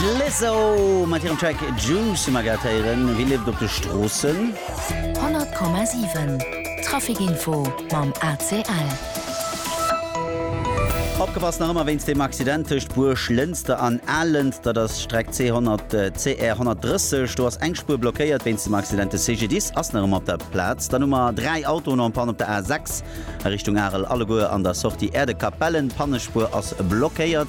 D'Lizzo mat hirem Track Juice hu mer grad héieren. Wie lieft op de Stroossen? 100,7 Traficinfo mam ACL. Opgepasst nach ëmmer wéinst deem Accident tëscht Buerglënster an Alent. Dat ass d'Streck C 100, CR 130. Do ass eng Spuer blockéiert wéinst dem Accident. De CGDIS ass nach ëmmer op der Plaz. Dann hu mer dräi Autoen en panne op der A 6. A Richtung Arel alleguer an der Sortie Erdekapellen. D'Pannespuer ass blockéiert.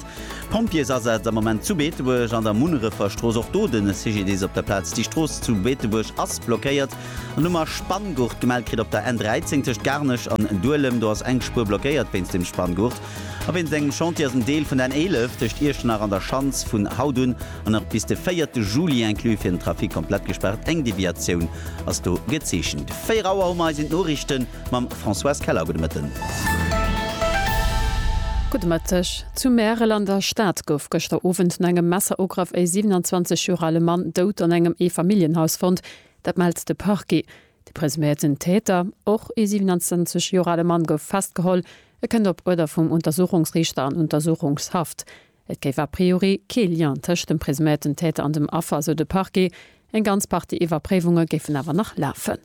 Pompjeesasaz am Moment zu Beetebuerg an der Munnereferstrooss. Och do de CGDIS op der Plaz. Déi Strooss zu Beetebuerg ass blockéiert. An hu mer Spanngurt gemellt kritt op der N13 tëscht Garnech an Duelem. Do ass eng Spuer blockéiert wéinst dem Spanngurt. A wéinst engem Chantier ass en Deel vun der N11 tëscht Iechternach an der Schanz vun haut un an nach bis de 4 Juli inclus fir den Trafic komplett gespaart. Eng Deviatioun ass do gezeechent. 4 Auer hu mer eis en d'Noriichten. Mam Françoise Keller, gudde Mëtten. Gudde Mëtteg. Zu Märel an der Stad gouf gëschter Owend no engem Messerugraff e 27 Joer ale Mann dout an engem Eefamilljenhaus fonnt. Dat mellt de Parquet. De presuméierten Täter, och e 27 Joer ale Mann, gouf festgeholl. E kënnt op Uerder vum Untersuchungsriichter an Untersuchungshaft. Et géif a priori kee Lien tëscht dem presuméierten Täter an dem Affer, sou de Parquet. Eng ganz Partie Iwwerpréiwunge géifen awer nach lafen.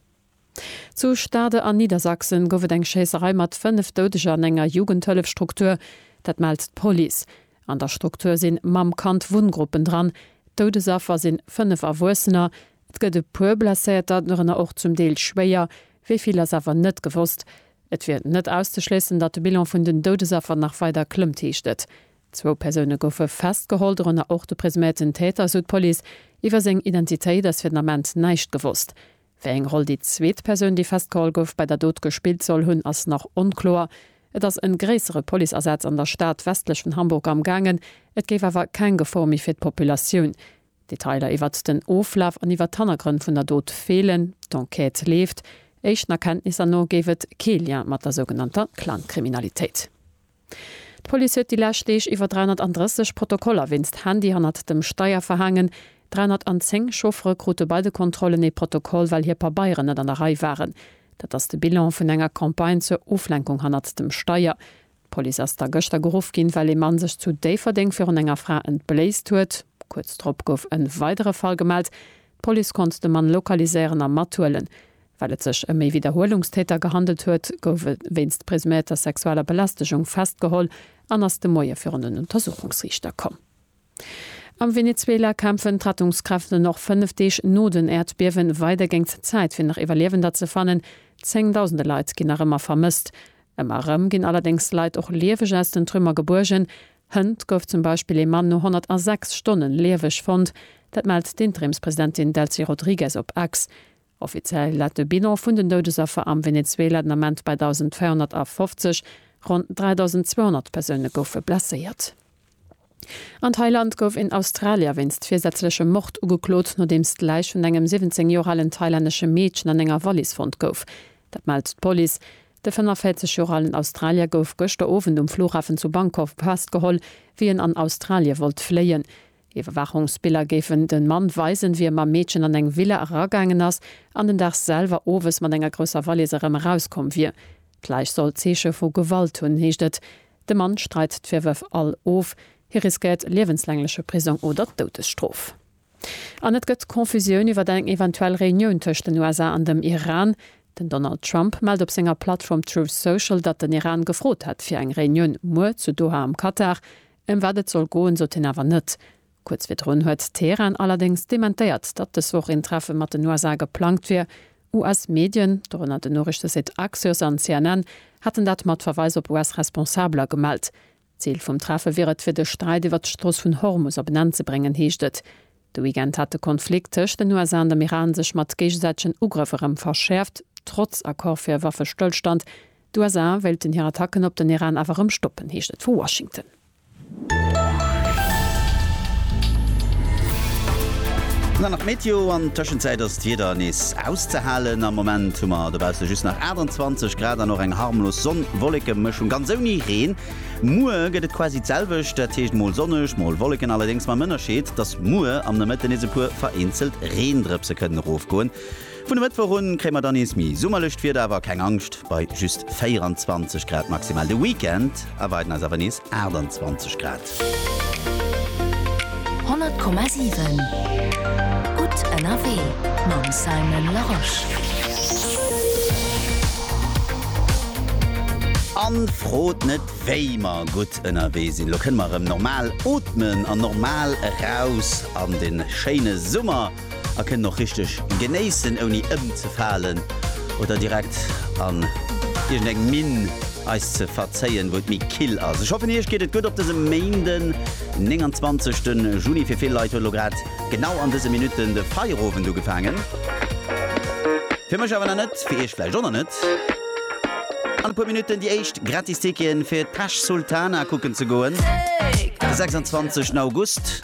Zu Stade an Niedersachsen gouf et eng Schéisserei mat 5 Doudeger an enger Jugendhëllefstruktur. Dat mellt d'Police. An der Struktur sinn Mamm-Kand-Wunngruppen dran. Doudesaffer sinn 5 Erwuessener. Et gëtt e puer Blesséierter, dorënner och zum Deel schwéier. Wéi vill ass awer net gewosst. Et wier net auszeschléissen, datt de Bilan vun den Doudesaffer nach weider klëmmt, heescht et. Zwou Persoune goufe festgeholl, dorënner och de presuméierten Täter, esou d'Police. Iwwer seng Identitéit ass fir den Ament näischt gewosst. Wéi eng Roll déi zweet Persoun, déi festgeholl gouf, bei der Dot gespillt soll hunn, ass nach onkloer. Et ass en gréissere Policeasaz an der Stad westlech vun Hamburg amgaangen, et géif awer keng Gefor méi fir d'Populatioun. Detailer iwwert den Oflaf an iwwert d'Hannergrënn vun der Dot feelen. D'Enquête leeft. Éischten Erkenntnisser no géif et kee Lien mat der sougenannter Clankriminalitéit. D'Police huet déi lescht Deeg iwwer 330 Protokoller wéinst Handy hannert dem Steier verhaangen. 310 Chauffere krute bei de Kontrollen ee Protokoll, well hir Pabeieren net an der Rei waren. Dat ass de Bilan vun enger Campagne zur Oflenkung hannert dem Steier. D'Police ass da gëschter geruff ginn, well ee Mann sech zu Déifferdeng virun enger Fra entbléist huet. Kuerz drop gouf e weidere Fall gemellt. D'Police konnt de Mann lokaliséieren a mathuelen. Well et sech ëm ee Widderhuelungstäter gehandelt huet, gouf e wéinst presuméierter sexueller Belästegung festgeholl an ass de Moie virun den Untersuchungsriichter komm. Am Venezuela kämpfen d'Rettungskräften och fënnef Deeg no den Äerdbiewen weider géingt d'Zäit fir nach Iwwerliewender ze fannen. Zéngdausende Leit ginn nach ëmmer vermësst. Ëmmer erëm ginn allerdéngs Leit och lieweg aus den Trümmer gebuergen. Hënt gouf zum Beispill ee Mann no 106 Stonnen lieweg fonnt. Dat mellt d'Interimspresidentin Delcy Rodriguez op X. Offiziell läit de Bilan vun den Doudesaffer am Venezuela den Ament bei 1.250, ronn 3.200 Persoune goufe blesséiert. An Thailand gouf een Australier wéinst virsätzlechem Mord ugeklot, nodeems d'Läich vun engem 17 Joer alen thailännesche Meedchen an enger Wallis fonnt gouf. Dat mellt d'Police. De 45 Joer alen Australier gouf gëschter Owend um Flughafen zu Bangkok festgeholl, wéi en an Australie wollt fléien. Iwwerwaachungsbiller géifen de Mann weisen, wéi e mam Meedchen an eng Villa eragaangen ass an den Dag selwer owes mat enger grousser Valiss erëm erauskomm wier. D'Läich soll Zeeche vu Gewalt hunn, heescht et. De Mann streit d'Virwërf all of. Hie riskéiert liewenslängleche Prisong oder d'Doudesstrof. An et gëtt Confusioun iwwer eng eventuell Reunioun tëscht den USA an dem Iran. Den Donald Trump mellt op senger Plattform Truth Social, datt den Iran gefrot hätt fir eng Reunioun muer zu Doha am Katar. Ëm wat et soll goen, sot hien awer net. Kuerz virdrun huet Teheran allerdéngs dementéiert, datt dës Woch een Treffe mat den USA geplangt wier. US-Medien, dorënner den Noriichtesite Axios an CNN, haten dat mat Verweis op US-Responsabeler gemellt. Zil vum Treffe wier et, fir de Sträit iwwer d'Strooss vun Hormus op en Enn ze bréngen, heescht et. De Weekend hat de Konflikt tëscht den USA an dem Iran sech mat géigesäitegen Ugrëff erëm verschäerft, trotz Accord fir e Waffestëllstand, D'USA wéilten hir Attacken op den Iran awer erëm stoppen, heescht et vu Washington. Dann nach d'Meteo, an Tëschenzäit ass d'Wieder nees auszehalen. Am Moment hu mer dobausse just nach 28 Grad an och eng harmlos Sonn-Wolleke-Mëschung, ganz ouni Reen. Muer gëtt et quasi d'selwecht, dat heescht mol sonneg, mol Wolleken, allerdéngs mam Ënnerscheed, dass muer am Nomëtte nees e puer vereenzelt Reendrëpse kënnen erofgoen. Vun e Mëttwoch un kréie mer dann nees méi summerlecht Wieder, awer keng Angscht, bei just 24 Grad maximal. De Weekend erwaarden eis awer nees 28 Grad. 100,7 Gutt ënnerwee mam Simon Larosche. An frot net wéi mer gutt ënnerwee sinn. Elo kënne mer erëm normal ootmen an normal eraus an de schéine Summer. a kënnen och richteg genéissen ouni ëmzefalen oder direkt an iergend eng Minn eis ze verzéien wou et méi kill ass. Ech hoffen iech geet et gutt op dësem Méinden 29 den Juni. Fir vill Leit huet lo grad genau an dëse Minutten de Feierowend ugefaangen. Fir mech awer nach net, fir iech vläicht och nach net. An e puer Minutten déi éischt gratis Ticketen fir d'Pesch Sultana kucken ze goen, de 26 August.